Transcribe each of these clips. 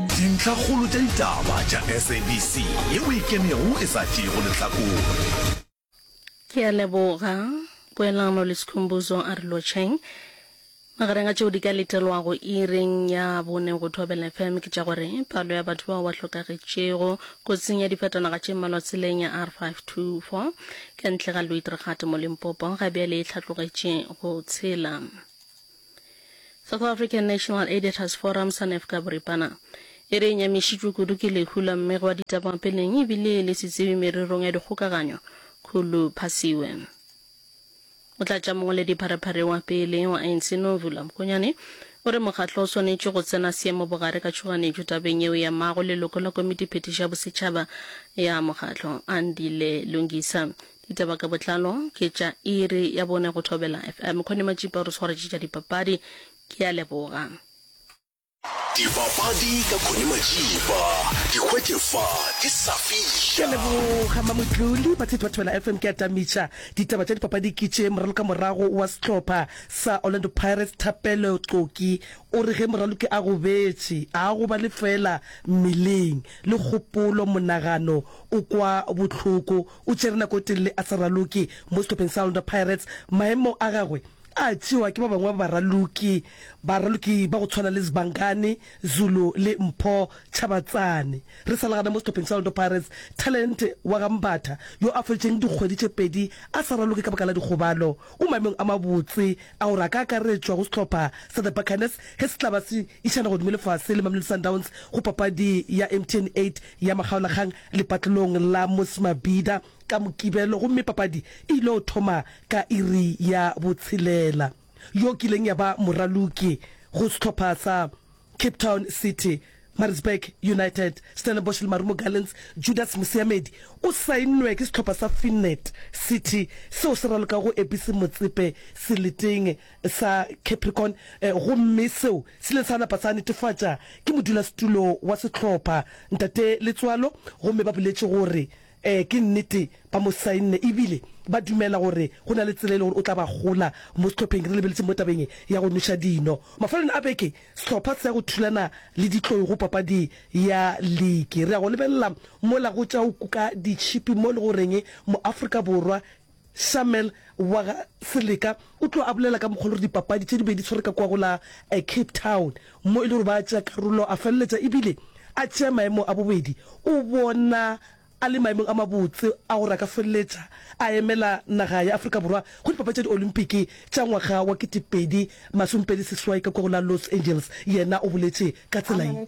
Dintlhakgolo tša ditaba tša SABC yeo e kenego e sa tšeego lehlakore. Ke a leboga. Poelano le Sikhumbuzo Arilotsheng. Magareng a tšeo di ka letelwago iring ya bone go Thobela FM ke tša gore palo ya batho bao ba hlokagetšego kotsing ya difatanaga tše mmalwa tseleng ya R524 ka ntle ga Luitregate mo Limpopo ga bjale e hlatlogetše go tshela. South African National Editors Forum, SANEF ka boripana, e re e nyamišitšwe kudu ke lehu la mme gwa ditaba peleng e bile le setsebi mererong ya dikgokaganyo, Khulu Phasiwe. Motlatšamongwaledi pharephare wa pele wa ANC, Nomvula Mokonyane, o re mokgatlo o swanetše go tsena seemo bogare ka tšhoganetšo tabeng yeo e amago leloko la komiti phethiši ya bosetšhaba ya mokgatlo, Andile Lungisa. Ditaba ka botlalo ke tša iri ya bone go Thobela FM. Kgone Matšipa o re swaretše tša dipapadi. Ke a leboga. Dipapadi ka Kgone Matšipa di hwetše fa ke sa fiša. Ke a leboga Mamotloli. Batshehetsi ba Thobela FM ke a tamiša. Ditaba tša dipapadi ke tše, moralokamorago wa sehlopha sa Orlando Pirates Thapelo Xoki o re ge moraloki a gobetše a gobale feela mmeleng le kgopolo monagano o kwa bohloko. O tšere nako e telele a sa raloke mo sehlopheng sa Orlando Pirates. Maemo a gagwe a tšewa ke ba bangwe ba baraloki baraloki ba go tshwana le Sibangani Zulu le Mpho Tshabatsane. Re sa le gana mo sehlopheng sa Orlando Pirates, talente wa ga Mbatha, yo a feditšeng dikgwedi tše pedi a sa raloke ka baka la dikgobalo, o maemong a mabotse a gore a ka akaretšwa go sehlopha sa The Buccaneers ge se tla ba se išana godimo lefase le Mamelodi Sundowns go papadi ya MTN 8 ya makgaolakgang lepatlelong la Mosmabhida ka Mokibelo gomme papadi e ile go thoma ka iri ya botshelela. Yo kileng ya ba moraloki go sehlopha sa Cape Town City, Maritzburg United, Stellenbosch le Marumo Gallants, Judas Mosiamedi o saennwe ke sehlopha sa Finnet City seo se ralokago Ebisi Motsepe seleteng. sa Capricorn gomme seo se ile sa napa sa netefatša ke modulasetulo wa sehlopha, Ntate Letsoalo, gomme ba boletše gore ee, ke nnete, ba mo sainne e bile ba dumela gore go na le tsela e le gore o tla ba gola mo sehlopheng. Re lebeletse mo tabeng ya go nweša dino. Mafelelong a beke sehlopha se ya go thulana le Ditlou go papadi ya liki. Re ya go lebelela mola go tša go kuka ditšhipi mo e le goreng mo Afrika Borwa Sharmel wa ga Seleka o tlo a bolela ka mokgwa le gore dipapadi tše di be di tshwere ka kwa go la Cape Town mo e le gore ba tšea karolo a feleletša e bile a tšea maemo a bobedi. O bona a le maemong a mabotse a gore a ka feleletša a emela naga ya Afrika Borwa go dipapadi tša diolimpiki tša ngwaga wa kete pedi masome pedi seswai ka kwa go la Los Angeles. Yena o boletše ka tsela ye.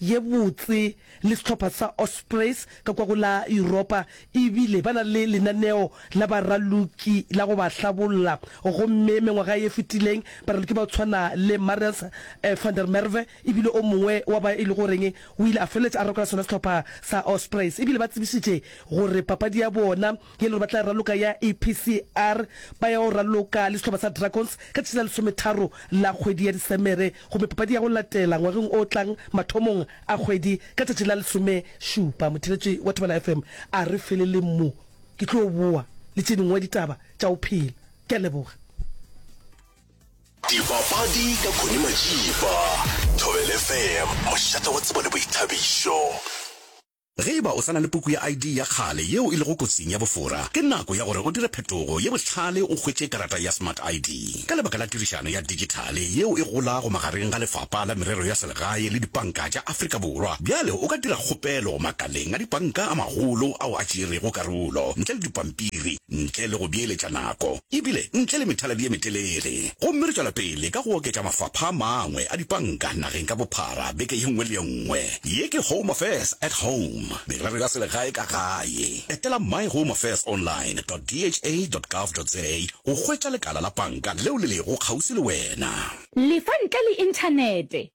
ye botse le sehlopha sa Ospreys ka kwa go la Yuropa e bile ba na le lenaneo la baraloki la go ba hlabolla gomme mengwaga ye fetileng baraloki ba go tshwana le Marius van der Merwe e bile o mongwe wa ba e le goreng o ile a feleletša a rokela sona sehlopha sa Ospreys e bile ba tsebišitše gore papadi ya bona Ke le re ba tla raloka ya EPCR ba ya o raloka le sehlopha sa Dragons ka tšatši la lesometharo la kgwedi ya Disemere gomme papadi ya go latela ngwageng o tlang mathomong a kgwedi ka tšatši la lesomešupa. Motheeletši wa Thobela FM a re feleleng mo, ke tlo boa le tše dingwe ditaba tša go phela. Ke a leboga. Dipapadi ka Connie Majiba, Thobela FM, mošate wa tsebo le boithabišo. Ge e ba o sa na le puku ya ID ya kgale yeo e lego kotsing ya bofora, ke nako ya gore o dire phetogo ye bohlale o hwetše karata ya Smart ID. Ka lebaka la tirišano ya digithale yeo e golago magareng ga Lefapa la Merero ya Selegae le dipanka tša Afrika Borwa, bjale o ka dira kgopelo makaleng a dipanka a magolo ao a tšeerego karolo ntle le dipampiri. ntle le go beeletša nako e bile ntle le methaladi ye metelele. Gomme re tšwela pele ka go oketša mafapha a mangwe a dipanka nageng ka bophara beke ye nngwe le ye nngwe. Ye ke Home Affairs at Home, merero ya selegae ka gae. Etela myhomeaffairsonline dot dha dot gov dot za go hwetša lekala la panka leo le lego kgauswi le wena. Lefa ntle le Inthanete.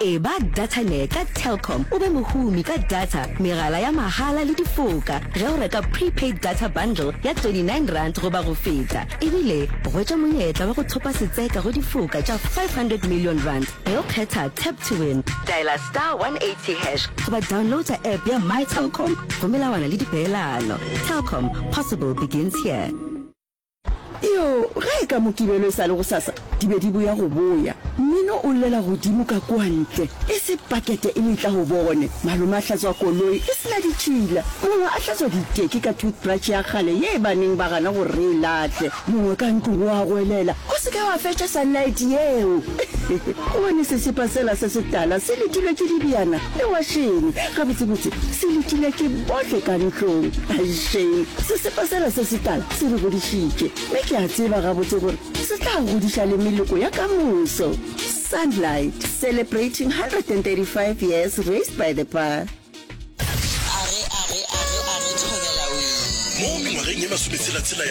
Eba Datanet ka Telkom o be mohumi ka data, megala ya mahala le difoka ge o reka prepaid data bundle ya R29 goba go feta. Ebile hwetša monyetla wa go thopa setseka go difoka tša R500 million ge o kgetha Tap to Win. Dialer star 180 hash goba downloader app ya MyTelkom go melawana le dipeelano. Telkom, possible begins here. Iyo, ge e ka Mokibelo e sa le gosasa, di be di boya go boya. Mmino o llela godimo ka kua ntle, e se pakete e letla go bone. Malome a hlatswa koloi e se na ditšhila. Mongwe a hlatswa diteki ka toothbrush ya kgale ye e baneng ba gana gore re e lahle. Mongwe ka ntlong o a goelela, O se ke wa fetša sunlight yeo! Go bone sesepa sela se setala se letilwe ke dibjana le wašene. Gabotsebotse, se letilwe ke bohle ka ntlong. Aishame! Sesepa sela se setala se re godišitše, mme ke a tseba gabotse gore se tla godiša le meloko ya ka moso. Sunlight, celebrating 135 years raised by the bar. Mo mengwageng ye masometshela-tshela ya